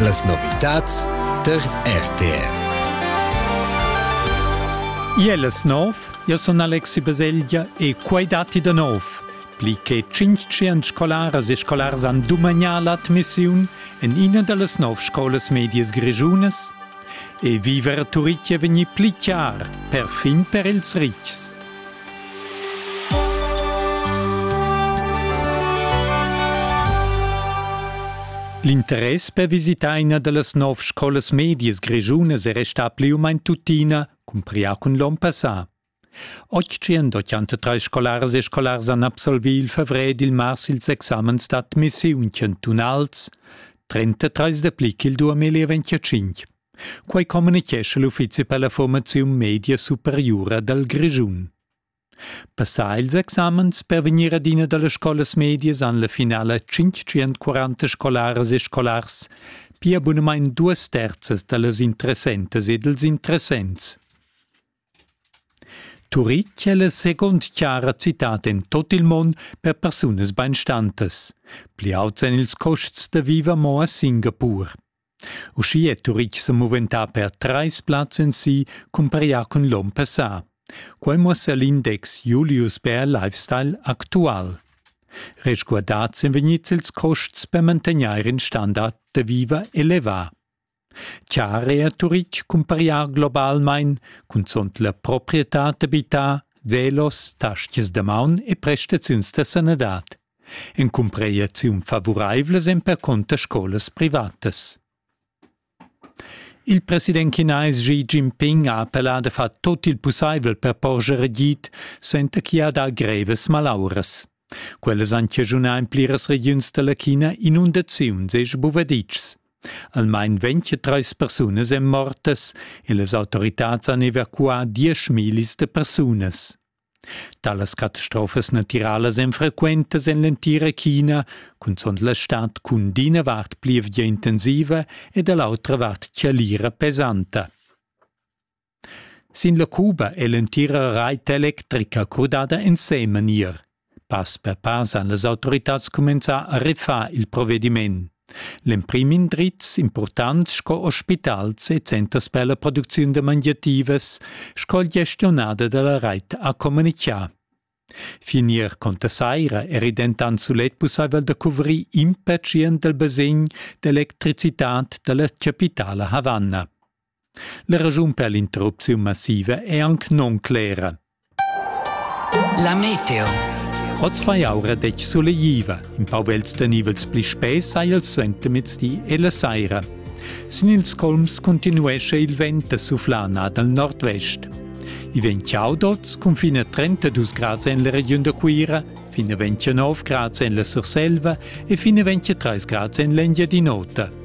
Las novitads tar RTR. Iel es nov, io sun Alexi Baselgia e quai datti da nov. Pli che 500 scolaras e scolars han dumagnà l'admissiun en ina da las nov scolas medias grischunas e viver a Turitg è vegnì pli chiar, perfin per ils ritgs. L'interess per visitar ina da las nov scolas medias grischunas è restà pli u main tuttina, cumprià cun l'on passà. Oggi han 83 scolaras e scolars han absolvì il fevrè ed il mars ils examens d'admissiun chantunals, 33 da pli ch'il 2025. Quei communitgescha l'uffizi per la formaziun media superiura dal Grischun. Passà ils examens per vegnir adina dallas scolas medias han la finala 540 scolaras e scolars, pia bunamain duas terzas dallas interessentas e dals interessents. Turitg è la segund chara citad en tot il mund per persunas beinstantas. Pli auts èn ils costs da viver mo a Singapur. Uschì è Turitg sa muventà per trais plazs en si cumpareglià cun l'onn passà. Quai muossa l'index Julius Bär Lifestyle actual. Resguardads èn vegnids ils costs per mantegnair in standard da viver elevà. Chiar è a Turitg cumpareglià globalmain, cunzont la proprietad d'abitar, velos, taschias da maun e prestaziuns da sanadad. In cumpregliaziun favuraivla s'empercunter scolas privatas. Il president chinais Xi Jinping ha appellà da far tut il pussaivel per porscher agid suenter ch'i ha dà grevas malauras. Quellas han chaschunà en pliras regiuns da la China inundaziuns e sbuvaditschs. Almain 23 persunas èn mortas e las autoritads han evacuà 10.000 persunas. Talas catastrofas natiralas èn frequentas en l'entira China, cunzunt la stad cun d'ina vart plievgia intensiva e da l'autra vart chalira pesanta. Sin la Cuba è l'entira rait electrica crudada ensemen ier. Pass per pass han las autoritads cumenzà a refar il provediment. L'emprim indrizs impurtants sco ospitals e centers per la producziun da mangiativas sco il gestionader dalla reit ha communichà. Finir conta saira eri dentant sulet pussaivel da cuvrir impatschient del basegn d'electricitad dalla chapitala Havanna. La raschun per l'interrupziun massiva è anc non clera. La meteo. Oz vai aura detg solegliva. In pau vels tenivels pli spess hai il suentermezdi e la saira. Sin ils colms continuescha il vent da suflana dal nord-vest. I vegn chaud oz cun fin a 32 grads en la regiun da Cuira, fin a 29 grads en la Surselva e fin a 23 grads en l'Engiadin'Ota.